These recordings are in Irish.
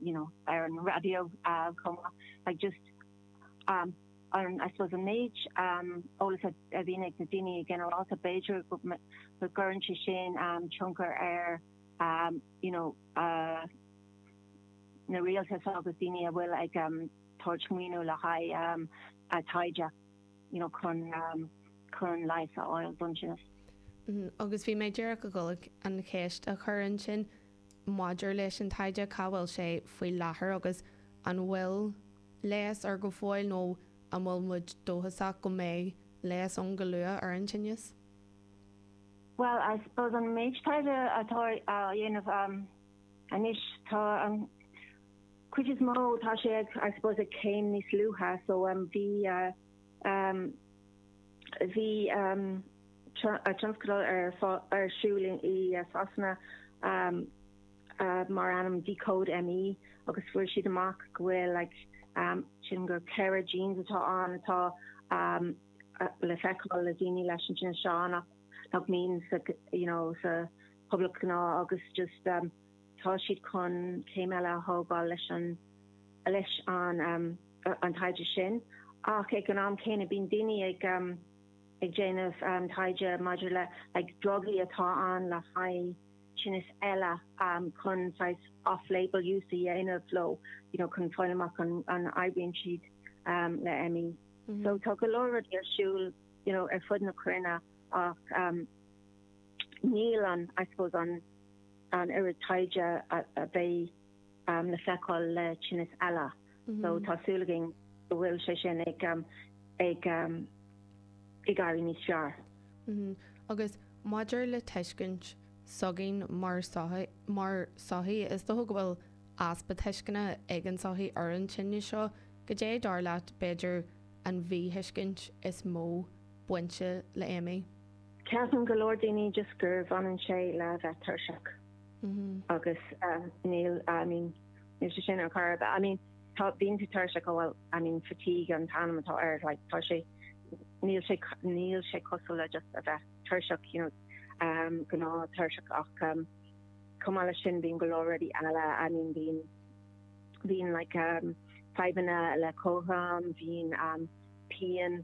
you know, ar an raidió chomh maith, like just um an, I suppose, an méid um eolas a a bhíonn ag na daoine ginearálta, b'fhéidir go go gcuireann sé sin um tionchar ar um you know uh na rialtais agus daoine a bhfuil ag um tabhairt maoiniú le haghaidh um a taighde, you know, chun um chun leigheas a fháil don tinneas. Agus bhí mé ag iarraidh a dhul an cheist a chur ansin. maidir leis an taighde, cá bhfuil sé faoi láthair agus an bhfuil leigheas air go fóill nó an bhfuil muid dóchasach go mbeidh leigheas ann go luath ar an tinneas? Bhuel, I suppose an méid taighde atá á dhéanamh anois, tá an chuid is mó, tá sé ag, I suppose, ag céim níos luaithe, so bhí, Bhí tionscadal ar siúl i Sasana mar ainm Decode ME agus fuair siad amach go bhfuil like cinn, go ceithre genes atá ann atá le feiceáil le daoine leis an tinneas seo ach nach mbíonn sa you know sa phobal gnáth agus just tá siad chun céim eile a thógáil leis an leis an an taighde sin ach ag an am céanna bíonn daoine ag ag déanamh taighde maidir le like drugaí atá ann le haghaidh tinnis eile chun saghas off label use a dhéanamh leo you know chun fáil amach an an oibríonn siad le ME. So tá go leor rudaí ar siúl you know ar fud na cruinne ach níl an I suppose an an oiread taighde a bheidh le feiceáil le tinneas eile. So tá súil againn go bhfuil sé sin ag éirí níos fearr. Agus maidir le tuiscint s'againn mar sochaí, mar sochaí, is dócha go bhfuil easpa tuisceana ag an sochaí ar an tinneas seo. Goidé, dar leat, b'fhéidir an mhíthuiscint is mó bainte le ME? Ceapann go leor daoine just gur bhaineann sé le bheith tuirseach agus níl I mean níl sé sin ar chor ar bith, I mean tá bíonn tú tuirseach ó bhuel I mean fatigue an t-ainm atá air like tá sé níl sé níl sé cosúil le just a bheith tuirseach you know gnáth tuirseach ach chomh maith leis sin bíonn go leor rudaí eile I mean bíonn bíonn like fadhbanna le cothrom bíonn pian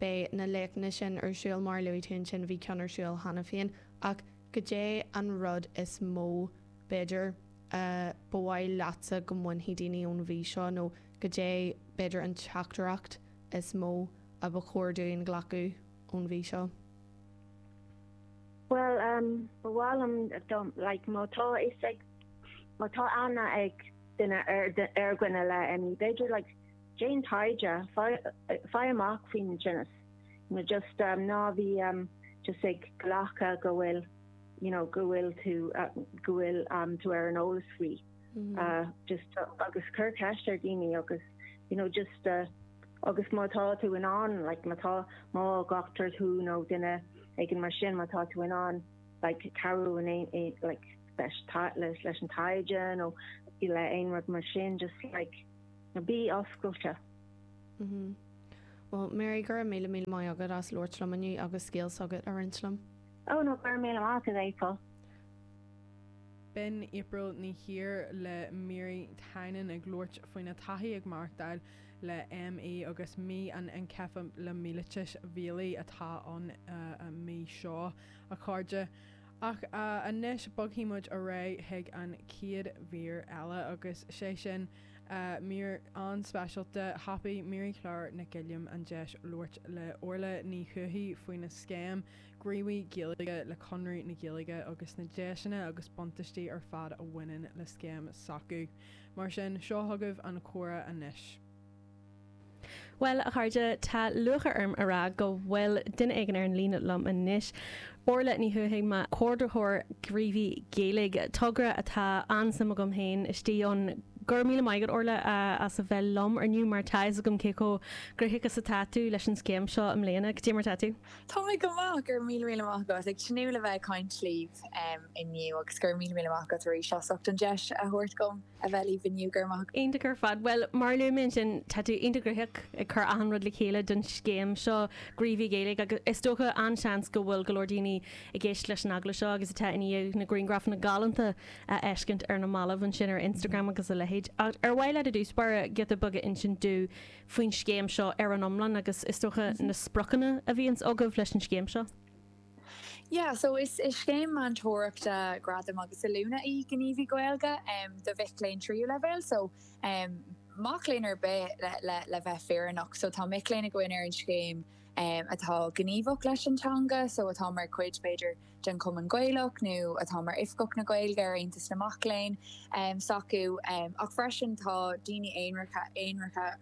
Beidh na léachtanna sin ar siúl, mar a luaigh tú, ansin. Bhí ceann ar siúl cheana féin. Ach goidé an rud is mó, b'fhéidir, a ba mhaith leatsa go mbainfeadh daoine ón mhí seo, nó goidé, b'fhéidir, an teachtaireacht is mó a ba chóir dúinn glacadh ón mhí seo? Bhuel, ba mhaith liom, like, má tá fhios ag, má tá aithne ag duine ar dhuine le ME, b'fhéidir, like, Déan taighde, faigh amach faoin tinneas, nó just ná bí just ag glacadh go bhfuil, you know, go bhfuil tú, go bhfuil tú ar an eolas faoi. Just agus cuir ceist ar dhaoine agus, you know, just agus má tá tú in ann, like má tá, más dochtúir thú nó duine éigin mar sin, má tá tú in ann, like cabhrú in aon, like leis an taighde nó le aon rud mar sin, just like, Know, bí oscailte. Mhm. Well, Mary, go raibh míle míle maith agat as labhairt liom inniu agus scéal s'agat a roinnt liom. Oh no, go raibh míle maith agat, April. B'in April Ní Íomhair le Mary Tynan ag labhairt faoina taithí ag maireachtáil le ME agus mí an Incheaptha le mielíteas mhiailgeach atá ann an mí seo, a chairde. Ach anois, bogfaidh muid ar aghaidh chuig an chéad mhír eile agus sé sin. Mír an-speisialta, thapaigh Marie-Claire Nic Gilliam an deis labhairt le Orla Ní Thuathaigh faoin scéim Gníomhaí Gaeilge, le Conradh na Gaeilge agus na deiseanna agus buntaistí ar fad a bhaineann le scéim s'acu. Mar sin, seo agaibh an comhrá anois. Bhuel, a chairde, tá lúcháir orm a rá go bhfuil duine éigin ar an líne liom anois, Orla Ní Thuathaigh, Comhordaitheoir Gníomhaí Gaeilge, togra atá an-suim agam féin istigh ann. Go raibh míle maith agat, Orla, as a bheith liom inniu mar tá a fhios agam cé chomh gnoitheach is atá tú leis an scéim seo i mbliana. Goidé mar atá tú. Tá mé go maith, go raibh míle míle maith agat. Ag tnúth le bheith ag caint libh inniu agus go raibh míle míle maith agat aríst as ucht an deis a thabhairt dhom. a bheith libh inniu, go raibh maith agat. Iontach ar fad. Bhuel, mar a luaigh mé ansin, tá tú iontach gnoitheach ag cur achan rud le chéile don scéim seo, Gníomhaí Gaeilge, agus is dócha, an-seans, go bhfuil go leor daoine ag éisteacht leis an agallamh seo agus atá i ndiaidh na griangrafanna galánta a fheiscint ar na mallaibh ansin ar Instagram agus a leithéid. Ach ar mhaith leat i dtús báire giota beag a insint domh faoin scéim seo ar an iomlán agus, is dócha, na spriocanna a bhíonns agaibh leis an scéim seo? Yeah, so is scéim meantóireachta, gradam agus oiliúna í Gníomhaí Gaeilge do mhic léinn tríú leibhéal, so mac léinn ar bith le bheith fírinneach. So tá mic léinn againn ar an scéim atá gníomhach leis an teanga, so atá mar chuid b'fhéidir den Chumann Gaelach nó atá mar Oifigeach na Gaeilge ar Aontas na Mac Léinn s'acu. Ach freisin tá daoine aonaracha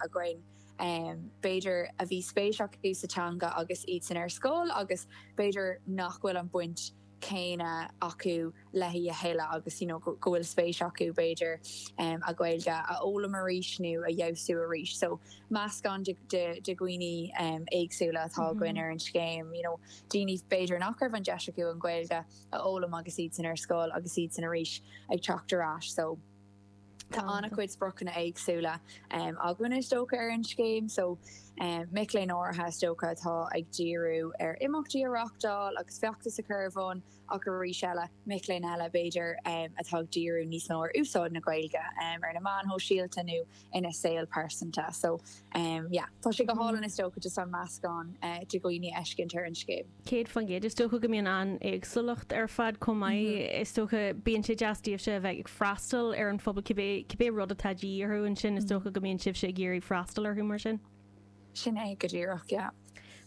againn, b'fhéidir, a bhí spéis acu sa teanga agus iadsan ar scoil agus b'fhéidir nach bhfuil an bhaint chéanna acu léi a thuilleadh agus go bhfuil spéis acu, b'fhéidir, an Ghaeilge a fhoghlaim arís nó a fheabhsú arís. So, meascán de dhaoine éagsúla atá againn ar an scéim, you know daoine, b'fhéidir, nach raibh an deis acu an Ghaeilge a fhoghlaim agus iadsan ar scoil agus iadsan arís ag teacht ar ais. So. Tá an-chuid spriocanna éagsúla againn is dócha ar an scéim so mic léinn áirithe is dócha atá ag díriú ar imeachtaí a reáchtáil agus feachtais a chur ar bun ach arís eile mic léinn eile b'fhéidir atá ag díriú níos mó ar úsáid na Gaeilge ar na meáin shóisialta nó ina saol pearsanta so yeah tá sé go hálainn is dócha just an meascán de dhaoine a fheiscint ar an scéim. 100%. Is dócha go mbíonn an-éagsúlacht ar fad chomh maith. Is dócha, bíonn sé deas daoibhse a bheith ag freastal ar an phobal cibé, cibé rud atá de dhíth orthu ansin, is dócha go mbíonn sibhse ag iarraidh freastal orthu mar sin. Sin é go díreach, yeah.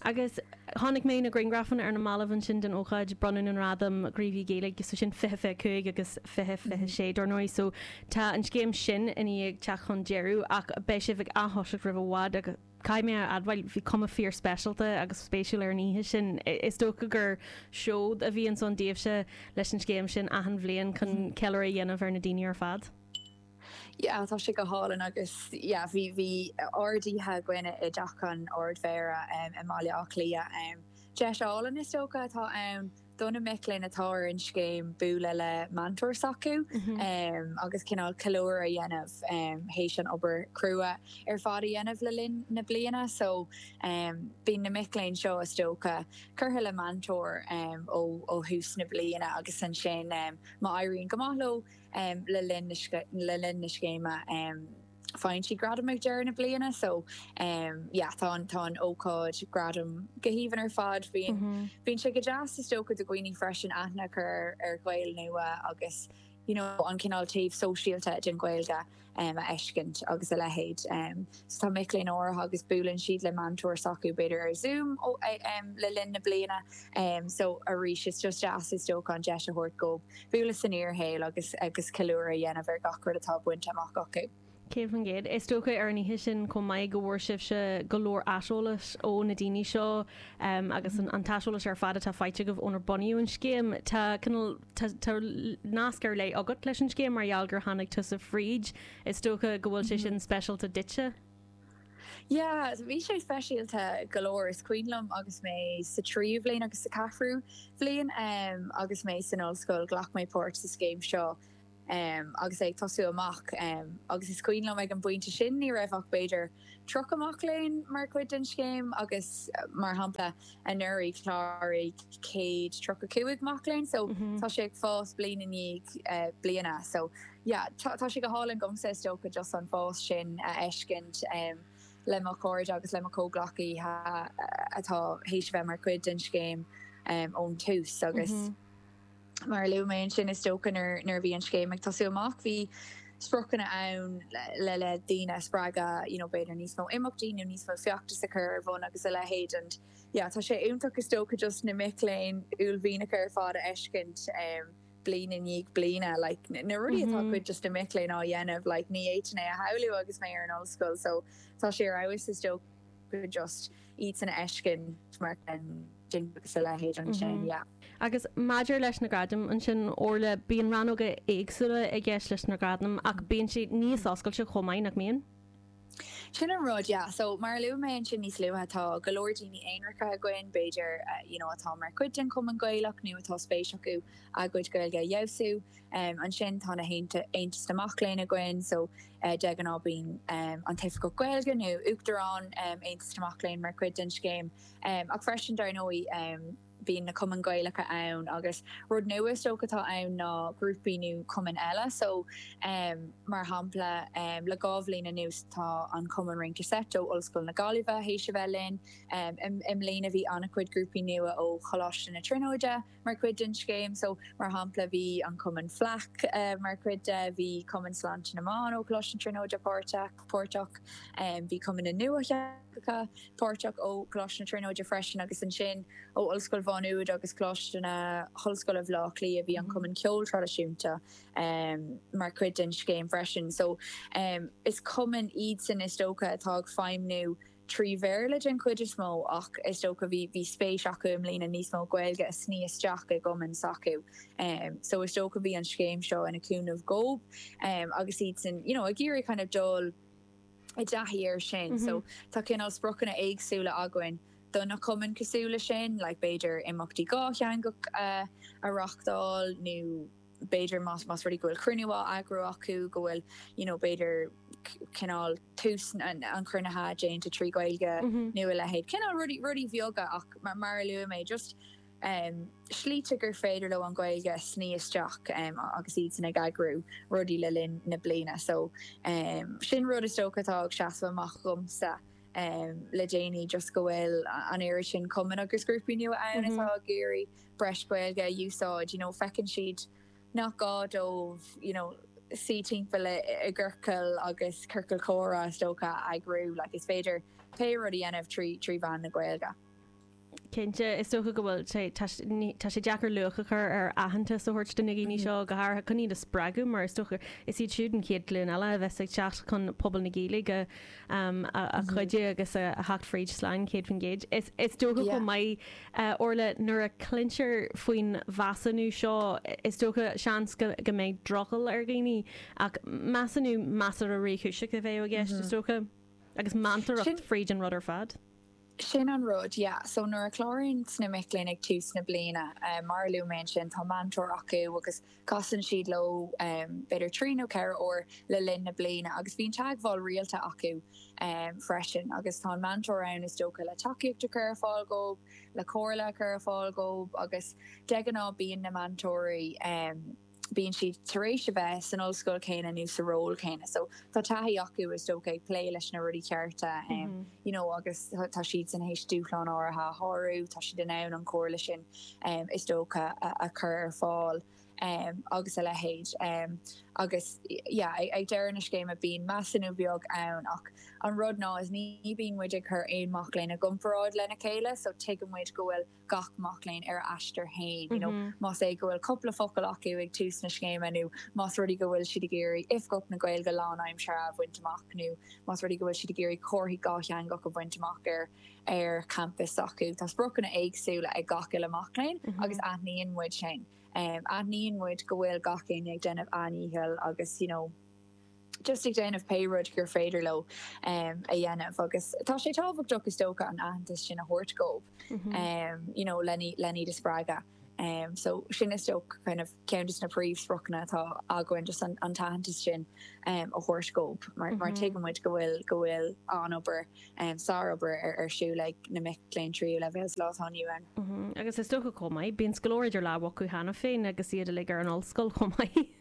Agus chonaic mé na griangrafanna ar na ballaibh ansin den ócáid bronnadh na ngradam Gníomhaí Gaeilge, so sin 20, 25 agus 20, 26 dár ndóigh, so tá an scéim sin i ndiaidh teacht chun deireadh ach beidh sibh ag atoiseacht roimh i bhfad agus. Caithfidh mé a admháil, bhí cuma fíorspeisialta agus spéisiúil ar an oíche sin. Is dócha gur seod a bhíonn ansin daoibhse leis an scéim sin achan bhliain chun ceiliúradh a dhéanamh ar na daoine ar fad? Yeah, tá sé go hálainn agus, yeah, bhí, bhí ardoíche againn i dTeach an Ardmhéara i mBaile Átha Cliath. Deis álainn, is dócha, atá ann. do na mic léinn atá ar an scéim bualadh le meantóir s'acu agus cineál ceiliúradh a dhéanamh théis an obair chrua ar fad a dhéanamh le linn na bliana. So bíonn na mic léinn seo, is dócha, curtha le meantóir ó thús na bliana agus ansin má éiríonn go maith leo le linn na scéime, Faigheann siad gradam ag deireadh na bliana so yeah tá an tá an ócáid gradam go haoibhinn ar fad. Bíonn bíonn sé go deas is dócha do dhaoine freisin aithne a chur ar ar Ghaeil nua agus you know an cineál taobh sóisialta den Ghaeilge a fheiscint agus a leithéid. So tá mic léinn áirithe agus buaileann siad le meantóir s'acu b'fhéidir ar Zoom le linn na bliana so arís is just deas is dócha an deis a thabhairt dóibh bualadh san fhíorshaol agus ceiliúradh a dhéanamh ar gach rud atá bainte amach acu. 100%. Is dócha ar an oíche sin chomh maith go bhfuair sibhse go leor aiseolais ó na daoine seo agus an t-aiseolas ar fad atá faighte agaibh ónar bunaíodh an scéim. Tá cineál nasc ar leith agat leis an scéim mar gheall gur tháinig tusa fríd. Is dócha go bhfuil sé sin speisialta duitse? Yeah, bhí sé speisialta go leor. Is cuimhin liom agus mé sa tríú bhliain agus sa ceathrú bhliain agus mé san ollscoil, ghlac mé páirt sa scéim seo agus é ag tosú amach agus is cuimhin liom ag an bpointe sin ní raibh ach b'fhéidir 30 mac léinn mar chuid den scéim agus mar shampla, Anuraidh chláraigh céad tríocha cúig mac léinn so tá sé ag fás bliain i ndiaidh bliana. So yeah tá sé go hálainn domsa is dócha just an fás sin a fheiscint le mo chairde agus le mo comhghleacaithe atá théis a bheith mar chuid den scéim ón tús agus Mar a luaigh mé ansin, is dócha nuair a bhí an scéim ag tosú amach, bhí spriocanna ann le le daoine a spreagadh, you know b'fhéidir níos mó imeachtaí nó níos mó feachtas a chur ar bhun agus a leithéid and yeah tá sé iontach is dócha just na mic léinn uaillmhianacha ar fad a fheiscint em bliain i ndiaidh bliana, like na rudaí atá cuid just na mic léinn á ndéanamh, like ní fhéadfainn é a shamhlú agus mé ar an ollscoil so tá sé ar fheabhas is dócha. go just iad san a fheiscint á ndéanamh agus a leithéid ansin, yeah. Agus maidir leis na gradaim ansin, Orla, bíonn rannóga éagsúla i gceist leis na gradaim ach bíonn siad níos oscailte chomh maith, nach mbíonn? Sin an rud, yeah. So, mar a luaigh mé ansin níos luaithe, tá go leor daoine aonracha againn, b'fhéidir, you know, atá mar chuid den Chumann Gaelach nó atá spéis acu a gcuid Gaeilge a fheabhsú. Ansin tá na hAontais mac léinn againn, so de ghnáth bíonn an t-oifigeach Gaeilge nó Uachtarán Aontas na Mac léinn mar chuid den scéim. Ach freisin, dar ndóigh, bíonn na cumainn Ghaelacha ann agus rud nua is dócha atá ann ná grúpaí nó cumainn eile. So, mar shampla, le dhá bhliain anuas tá an cumann Rince Seit ó Ollscoil na Gaillimhe théis a bheith linn. I mbliana bhí an-chuid grúpaí nua ó Choláiste na Tríonóide. mar chuid den scéim. So, mar shampla, bhí an Cumann Fleadh mar chuid de, bhí Cumann Sláinte na mBan ó Choláiste na Tríonóide páirteach, bhí Cumann na nEalaíon páirteach ó Choláiste na Tríonóide freisin agus ansin ó Ollscoil Mhá Nuad agus Coláiste na hOllscoile Bhleá Cliath. Bhí an Cumann Ceoil Traidisiúnta mar chuid den scéim freisin. So, is cumainn iadsan, is dócha, atá ag feidhmniú. trí Bhéarla den chuid is mó ach is dócha bhí bhí spéis acu i mbliana níos mó Gaeilge a shní isteach i gcumainn s'acu so is dócha bhí an scéim seo ina cúnamh dhób agus iadsan you know ag iarraidh kind of dul i dtaithí air sin so tá cineál spriocanna éagsúla againn do na cumainn cosúil leis sin like b'fhéidir imeachtaí dátheangacha a a reáchtáil nó b'fhéidir, más rud é go bhfuil cruinniú á eagrú acu, go bhfuil, you know, b'fhéidir cineál tús an chruinnithe déanta trí Ghaeilge nó a leithéid. Cineál rudaí, rudaí beaga ach mar, mar a luaigh mé, just slite gur féidir leo an Ghaeilge a shní isteach agus iadsan ag eagrú rudaí le linn na bliana. So sin rud is dócha atá ag seasamh amach dhomsa le déanaí, just go bhfuil an oiread sin cumann agus grúpaí nua ann atá ag iarraidh. breis Gaeilge a úsáid, you know, feiceann siad nach gá dóibh, you know, suí timpeall i gciorcail agus ciorcail chomhrá, is dócha, a eagrú, like, is féidir pé rud a dhéanamh trí, trí mheán na Gaeilge. Cinnte, is dócha go bhfuil sé, tá, ní, tá sé deacair luach a chur ar aitheantas a thabhairt do na daoine seo, go háirithe chun iad a spreagadh, mar is dócha, is iad siúd an chéad ghlúin eile a bheas ag teacht chun pobal na Gaeilge a, a, a chuidiú agus a, a theacht fríd slán, céad faoin gcéad Is, is dócha go mbeidh Orla, Nuair a chluintear faoin mheasúnú seo, is dócha, seans, go mbeidh drogall ar dhaoine, ach measúnú measartha réchúiseach a bheadh i gceist, is dócha, agus meantóireacht fríd an rud ar fad. Sin an rud, yeah. So nuair a chláraíonns na mic léinn ag tús na bliana, mar a luaigh mé ansin, tá meantóir acu agus Casann siad leo b'fhéidir trí nó ceithre uair le linn na bliana agus bíonn teagmháil rialta acu freisin agus tá an meantóir ann is dócha le tacaíocht a chur ar fáil dhóib, le comhairle a chur ar fáil dhóib agus de ghnáth bíonn na meantóirí, bíonn siad tar éis a bheith san ollscoil céanna nó sa ról céanna so tá taithí acu is dócha ag plé leis na rudaí cearta you know agus tá siadsan théis dúshláin áirithe a shárú, tá siad in ann an chomhairle sin is dócha, a chur ar fáil agus a leithéid. Agus yeah, ag deireadh na scéime bíonn measúnú beag ann ach an rud ná is ní bíonn muid ag cur aon mac léinn i gcomparáid lena chéile so tuigeann muid go bhfuil gach mac léinn ar a aistear féin, you know, más rud é go bhfuil cúpla focal acu ag tús na scéime nó más rud é go bhfuil siad ag iarraidh Oifgeach na Gaeilge lánaimseartha a bhaint amach nó más rud é go bhfuil siad ag iarraidh comharthaí dhátheangach a bhaint amach ar ar champas s'acu. Tá spriocanna éagsúla ag gach uile mac léinn agus aithníonn muid sin. Aithníonn muid go bhfuil gach éinne ag déanamh an-dhícheall agus you know just ag déanamh pé rud gur féidir leo a dhéanamh agus tá sé tábhachtach is dócha an aitheantas sin a thabhairt dhóibh you know len iad a spreagadh. So sin is dócha kind of ceann de na príomhspriocanna atá againn, just an t-aitheantas sin a thabhairt dhób mar tuigeann muid go bhfuil go bhfuil an-obair, sárobair ar siúl ag na mic léinn tríú leibhéal sa lá atá inniu ann. Agus is dócha chomh maith, bíonn go leor idir lámha acu cheana féin agus iad uilig ar an ollscoil chomh maith.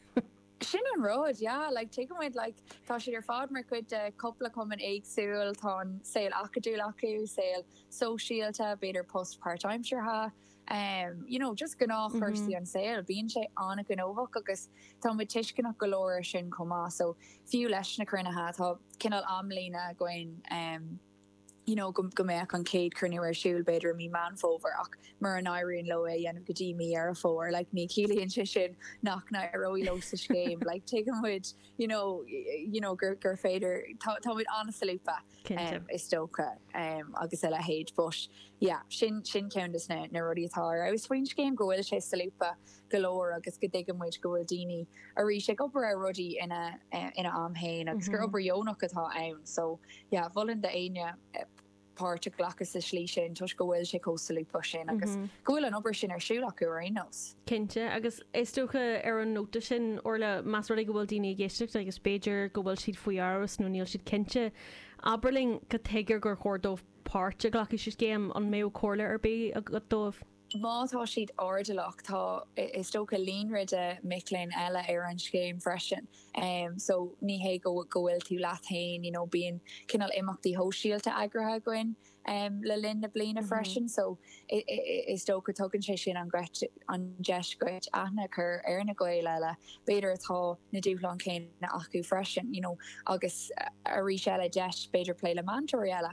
Sin an rud, yeah, like tuigeann muid like tá siad ar fad mar chuid de chúpla cumann éagsúil, tá an saol acadúil acu, saol sóisialta, b'fhéidir post páirtaimseartha. em you know just gnáthchúrsaí an saol, bíonn sé an-ghnóthach agus tá muid tuisceanach go leor ar sin chomh maith so fiú leis na cruinnithe tá cineál amlíne againn em you know go go mbeadh an chéad cruinniú ar siúl b'fhéidir i mí Meán Fómhair ach mura n-éiríonn leo é a dhéanamh go dtí mí Dheireadh Fómhair like ní ciallaíonn sé sin nach n-éireoidh leo sa scéim like tuigeann muid you know you know gur gur féidir tá tá muid an-solúbtha Cinnte. Is dócha. Agus a leithéid. But, yeah, sin, sin ceann de na, na rudaí atá ar fheabhas faoin scéim, go bhfuil sé solúbtha go leor agus go dtuigeann muid go bhfuil daoine arís ag obair ar rudaí ina, ina am fhéin agus gur obair dheonach atá ann. So, yeah, mholfainn do éinne páirt a ghlacadh sa slí sin toisc go bhfuil sé chomh solúbtha sin agus go bhfuil an obair sin ar siúl acu ar aon nós. Cinnte agus Is dócha, ar an nóta sin, Orla, más rud é go bhfuil daoine ag éisteacht agus b'fhéidir go bhfuil siad faoi amhras nó níl siad cinnte, abair linn cad chuige ar gur chóir dóibh páirt a ghlacadh sa scéim, an mbeadh comhairle ar bith agat dóibh? Má tá siad airdeallach, tá, is dócha, líonra de mhic léinn eile ar an scéim freisin so ní hé go bhfuil tú leat féin, you know, bíonn cineál imeachtaí shóisialta eagraithe againn. le linn na bliana freisin so is dócha tugann sé sin an deis dhuit aithne a chur ar na Gaeil eile b'fhéidir atá na dúshláin chéanna acu freisin you know agus arís eile deis b'fhéidir plé le meantóirí eile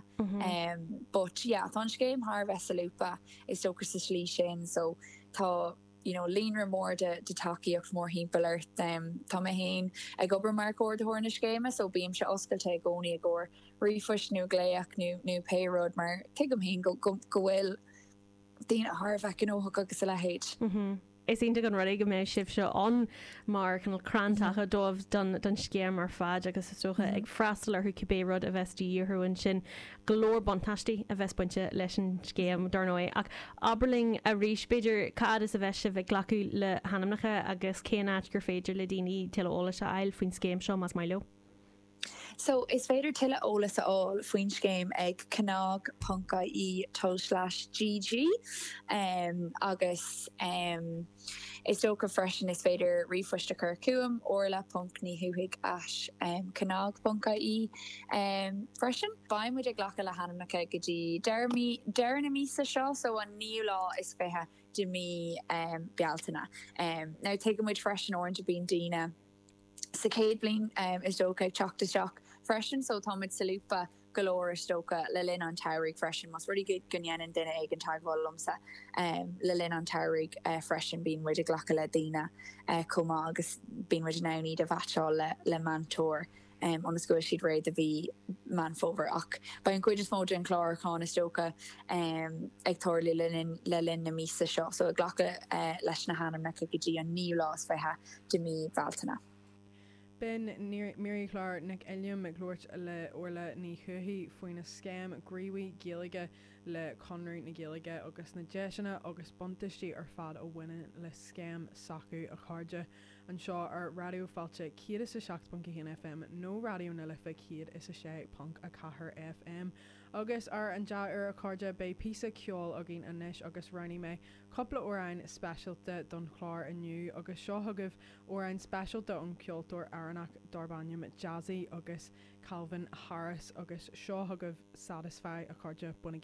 but yeah tá an scéim thar a bheith solúbtha is dócha sa slí sin so tá you know líonra mór de tacaíocht mórthimpeall ort. Tá mé féin ag obair mar Chomhordaitheoir na Scéime so bímse oscailte i gcónaí i gcomhair ríomhphoist nó glaoch nó pé rud mar tuigim féin go bhfuil daoine thar a bheith gnóthach agus a leithéid. Is iontach an rud é go mbeidh sibhse ann mar chineál crann taca dóibh don scéim ar fad agus is dócha ag freastal orthu cibé rud a bheas de dhíth orthu ansin. go leor buntáistí a bheas bainte leis an scéim, dar ndóigh, ach abair linn arís, b'fhéidir, cá fhad is a bheas sibh ag glacadh le hainmneacha agus cén áit gur féidir le daoine tuilleadh eolais a fháil faoin scéim seo más maith leo. So, is féidir tuilleadh eolais a fháil faoin scéim ag cnag.ie/gg, agus. Is dócha freisin is féidir ríomhphoist a chur chugam, orla ponc Ní Thuathaigh at cnag ponc IE freisin. Beidh muid ag glacadh le hainmneacha go dtí deireadh na míosa seo, so an naoú lá is fiche de mí Bealtaine. Now tuigeann muid freisin uaireanta bíonn daoine sa chéad bhliain is dócha, ag teacht isteach freisin. So táimid solúbtha go leor is dócha le linn an tsamhraidh freisin. Más rud é go ndéanann duine éigin teagmháil liomsa le linn an tsamhraidh freisin bíonn muid ag glacadh le daoine chomh maith agus bíonn muid in ann iad a mheaitseáil le meantóir ionas go bhfuil siad réidh do mhí Meán Fómhair. Ach beidh an chuid is mó den chlárúchán is dócha ag tarlú le linn na míosa seo. So ag glacadh leis na hainmneacha go dtí an naoú lá is fiche. de mhí Bhealtaine. B'in Mary-Claire Nic Uilliam ag labhairt le Orla Ní Chobhthaigh faoina scéim Gníomhaí Gaeilge le Conradh na Gaeilge agus na deiseanna agus buntaistí ar fad a bhaineann le scéim s'acu, a chairde! anseo ar Raidió Fáilte 107.1 FM nó Raidió na Life 106.4 FM. Agus ar an dea-uair, a chairde, beidh píosa ceoil againn anois agus roghnaigh mé. cúpla amhrán speisialta don chlár inniu agus seo chugaibh amhrán speisialta ón gceoltóir Éireannach darb ainm Jazzy agus Calvin Harris agus seo chugaibh Satisfy, a chairde, bainigí.